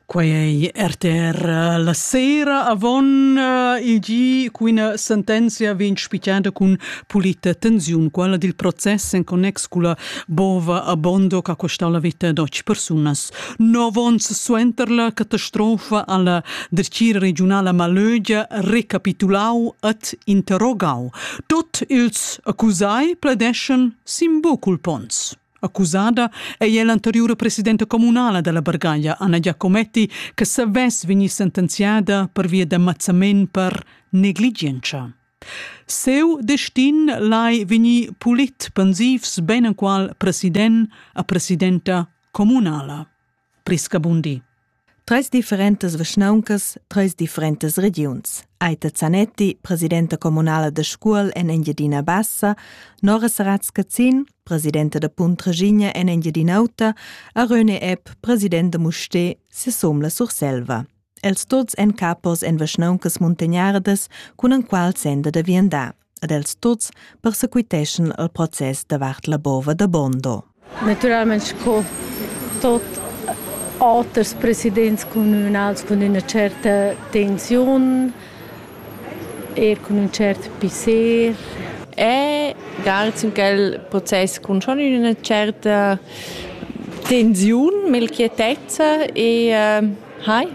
Quei ei rtr la sera avon il gi quina sentenzia vegn spichada cun pulita tensiun, quella dil process en connex culla bova a Bondo che ha costau la veta da otg persunas. Nov onns suenter la catastrofa ha la dretgira regiunala Malögia recapitulau ed interrogau. Tut ils accusai pledeschan sin bucul ponns. Accusada ei ella anteriura presidenta communala dalla Bargaglia, Anna Giacometti, che savess vegnir sentenziada pervia da mazzament per negligientscha. Seu destin lai vegnir pulit pensivs beinenqual president a presidenta communala. Priscabundi. Treis differentas vischnauncas, treis differentas regiuns. Aita Zanetti, presidenta comunala de Scuol en Engiadina Bassa, Nora Saratz-Cazin, presidenta da Punt Reginia en Engiadin'Auta, a Röne Epp, presidenta Musté, sesom la Surselva. Els tots en capos en vischnauncas muntagnardas, cun en qual senda da viandar. ed els tuts persequiteschan il process davart la bova da Bondo. Naturalmein sco tot auters presidents communals cun üna certa tensiun, er cun un cert pisser. E garz in quel process cun schon üna certa tensiun, melchietezza e uh, Hi.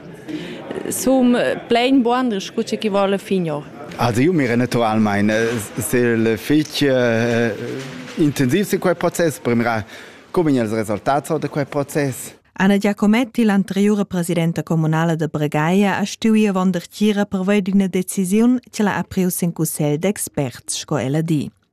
Sum plain buanders scu chi voul finir. Adieu, mira naturalmain. Ser il fich eh, intensiv sin quel process per mirar come els resultats da quel process. Anna Giacometti, l'anteriura presidenta comunala de Bregaia, ha stuì avon der Tgira per veir d'una decisiun che l'ha apriu sin cussegl d'experts, sco ella di.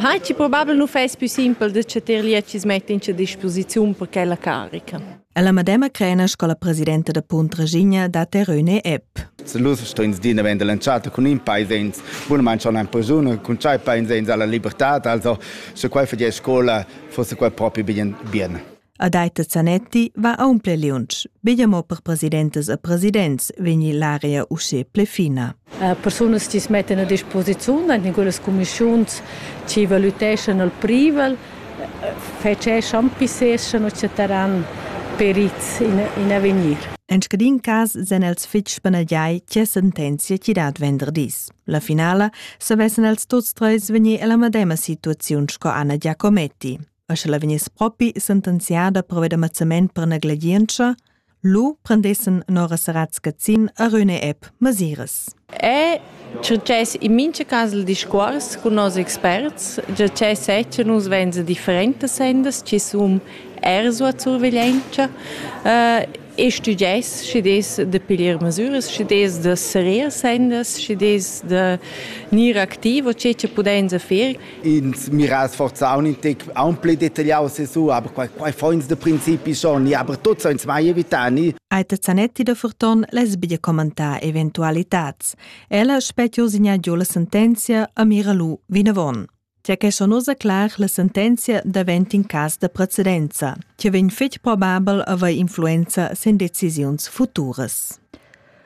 Hai ti probabel nu fais pü simpel da cha tier lietschis mett'ins a disposiziun per quella carica? È la madema Crena sco la presidenta da Punt Regina da Teröne Epp. Se lus strins din vend lanciata cun in paesens, bunament schon ein persone cun tschai paesens alla libertad, also se quai fadier scola, fosse quai propi bien bien. Adaita Zanetti va aunc liunsch. Biglia mo per presidentas e presidents vegni l'aria usche ple fina. Persunas ti mettan a disposiziun en quelles commissiuns ci valutescano il privel, feceschan, pisseschano, eccetera per ils in, in avegnir. En scadin cas sen els fitg spanagiai tge sentenzia ci dat venderdis. La finala savessen els tuts treis vegnir alla medema situaziun sco Anna Giacometti. e sche la vegniss propi sentenziada per ved ammazzament per negligientscha, lu prendessen Nora Saratz Cazzin a Rüne App masiras. È succes in mincha cas il discuors cun nos experts, già che setje nus venza differentas sendas chi sun er sua surveglientscha uh, e stuges schi des da pilir masuras, schi des da serir sendas, schi des da gnir activ o che che pudenza fer ins mira sforzà un tec aunc detagliau sesu, aber quei, quei foins de principi schon, aber tuts uns mai evitani. Aita Zanetti da Furton les biglia commentar eventualitats. Ella spetio signaggio la sentenzia a Miralu vinavon. Tja che sono clar la sentenzia davent in cas da precedenza, che vegn fetg probabel a avere influenza sen decisiuns futuras.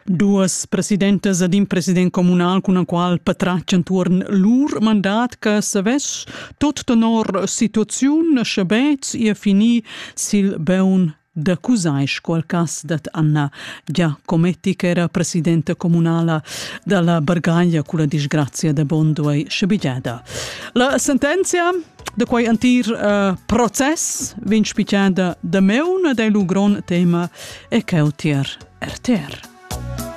Duas presidentas ed in president communal cun il qual patratg entuorn lur mandat che savess tot tenor situaziun schabetz ir finir sil beun da Cusaisch qual cas dat Anna Giacometti che era presidenta communala dalla Bargaglia culla disgrazia da Bonduei schabigliada. La sentenzia Da quei entir uh, process vegn spichada da meuna dei lu gron tema e cheu tier RTR.